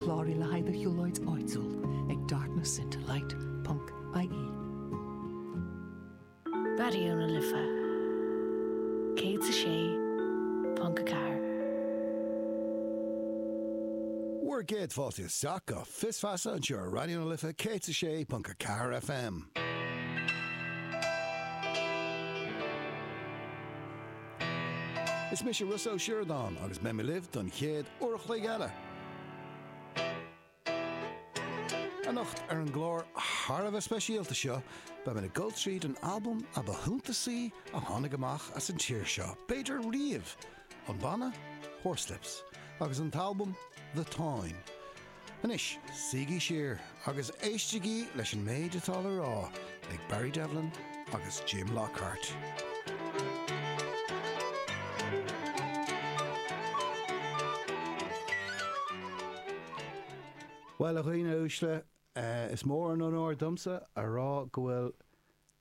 Cláraigh le haghaidh do shiúlóid áitiúil ag darknessintolight.ie. Raidió na Life 106.4. Bhur gcéad fáilte isteach go Fios Feasa anseo ar Raidió na Life 106.4 FM. Is mise Rossa Ó Sioradáin agus beidh mé libh don chéad uair an chloig eile. Anocht ar an gclár thar a bheith speisialta seo beidh mé ag dul tríd an albam ba shuntasaí a tháinig amach as an tír seo, b'fhéidir riamh, an banna Horslips agus an t-albam The Táin. Anois, suígí siar agus éistigí leis an méid atá le rá ag Barry Devlin agus Jim Lockhart. Bhuel, a dhaoine uaisle, is mór an onóir domsa a rá go bhfuil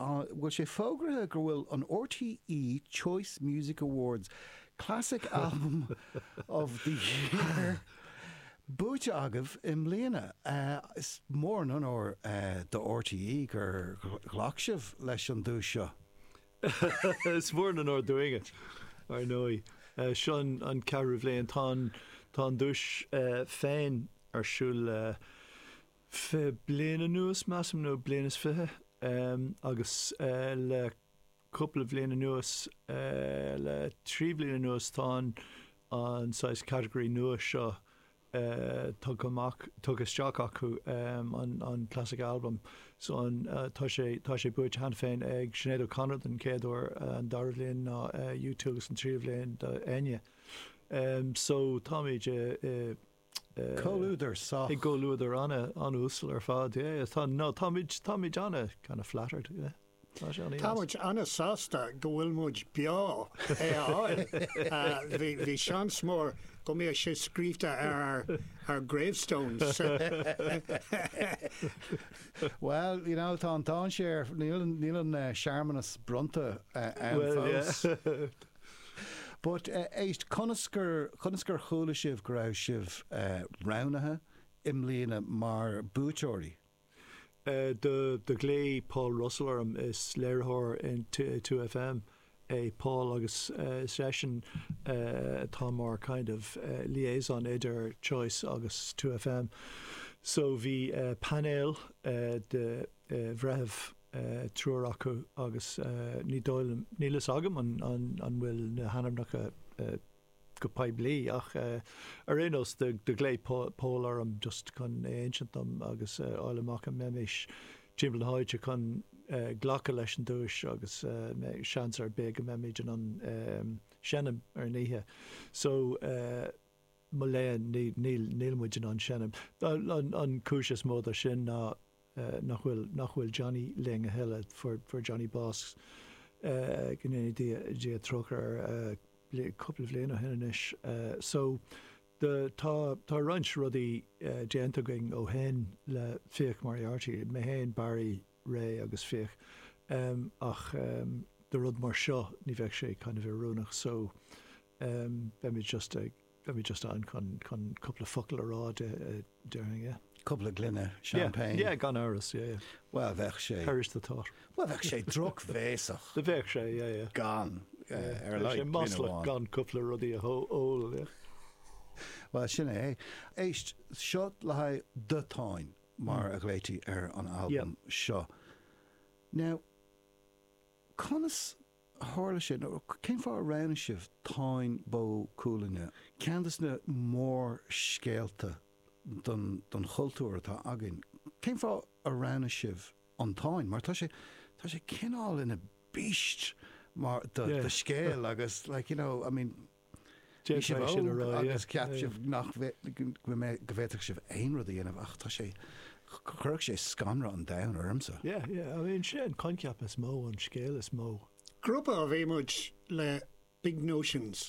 Bhfuil sé fógraithe go bhfuil an RTÉ Choice Music Awards Classic Album of the Year buaite agaibh i mbliana? Is mór an onóir do RTÉ gur ghlac sibh leis an duais seo. Is mór an onóir dúinne, ar ndóigh. Seo an ceathrú bliain. Tá an duais féin ar siúl le fiche bliain anuas measaim nó bliain is fiche agus le cúpla bliain anuas le trí bhliain anuas tá an saghas category nua seo tugtha amach tugtha isteach acu an classic album so an tá sé tá sé buaite cheana féin ag Sinéad O'Connor don chéad uair an dara bliain ná U2 agus an tríú bliain ná Enya so táimid i Comhluadar sách. I gcomhluadar an-uasal ar fad, yeah. No táimid, táimid ana kind of flattered, you know. Tá sé ana-dheas. Táimid ana sásta go bhfuil muid beo le é a fháil. Bhí, bhí seans mór go mbíodh sé scríobhta ar ár, ár gravestones. Well, you know, tá an dainséar, níl an, níl an searmanas bronnta ann fós. Well, yeah. But, éist, conas ar, conas ar chuala sibh go raibh sibh roghnaithe i mbliana mar bhuaiteoirí? Eh, do, do ghlaoigh Paul Russell orm, is léiritheoir in two FM é Paul agus is eisean atá mar kind of liaison idir Choice agus two FM. So bhí painéal de bhreithimh. triúr acu agus ní dóigh liom, níl fhios agam an bhfuil na hainmneacha go poiblí ach ar aon nós do ghlaoigh Pól orm just chun é a insint dom agus a fháil amach an mbeimís timpeall na háite chun glacadh leis an duais agus seans ar bith go mbeimis in ann seinm ar an oíche so mo léan, níl muid in ann seinm. An chúis is mó dó sin ná nach bhfuil Johnny linn a thuilleadh. Fuair Johnny bás, go ndéana Dia trócaire air, cúpla bliain ó shin anois. So, tá roinnt rudaí déanta againn ó shin le Fiach Moriarty, mé fhéin, Barry, Ray agus Fiach. Ach do rud mar seo ní bheadh sé kind of oiriúnach so beimid just ag, beimid just ann chun, chun cúpla focal a rá déarfainn yeah. Cúpla gloine champagne. Yeah, yeah gan amhras yeah, yeah. Bhuel bheadh sé. Perish the thought. Bhuel bheadh sé drochbhéasach. Do bheadh sé yeah, yeah. Gan yeah, ar like. Bheadh sé maslach gan cúpla rudaí a ól yeah. Bhuel sin é. Éist, seo le haghaidh do Táin. mar a ghlaoití ar an albam seo. Nó conas a tharla sé, nó cén fáth a roghnaigh sibh Táin Bó Cuailgne, ceann de na mórscéalta don chultúr atá againn, cén fáth a roghnaigh sibh an Táin, mar tá sé, tá sé cineál ina beast mór de scéal agus like, you know, I mean. Bhí sibh óg agus cheap sibh go bhféadfadh sibh aon rud a dhéanamh ach tá sé, chuirfeadh sé scanradh an domhain ormsa. Yeah, yeah, I mean, sé an coincheap is mó, an scéal is mó. Grúpa a bhí muid le big notions.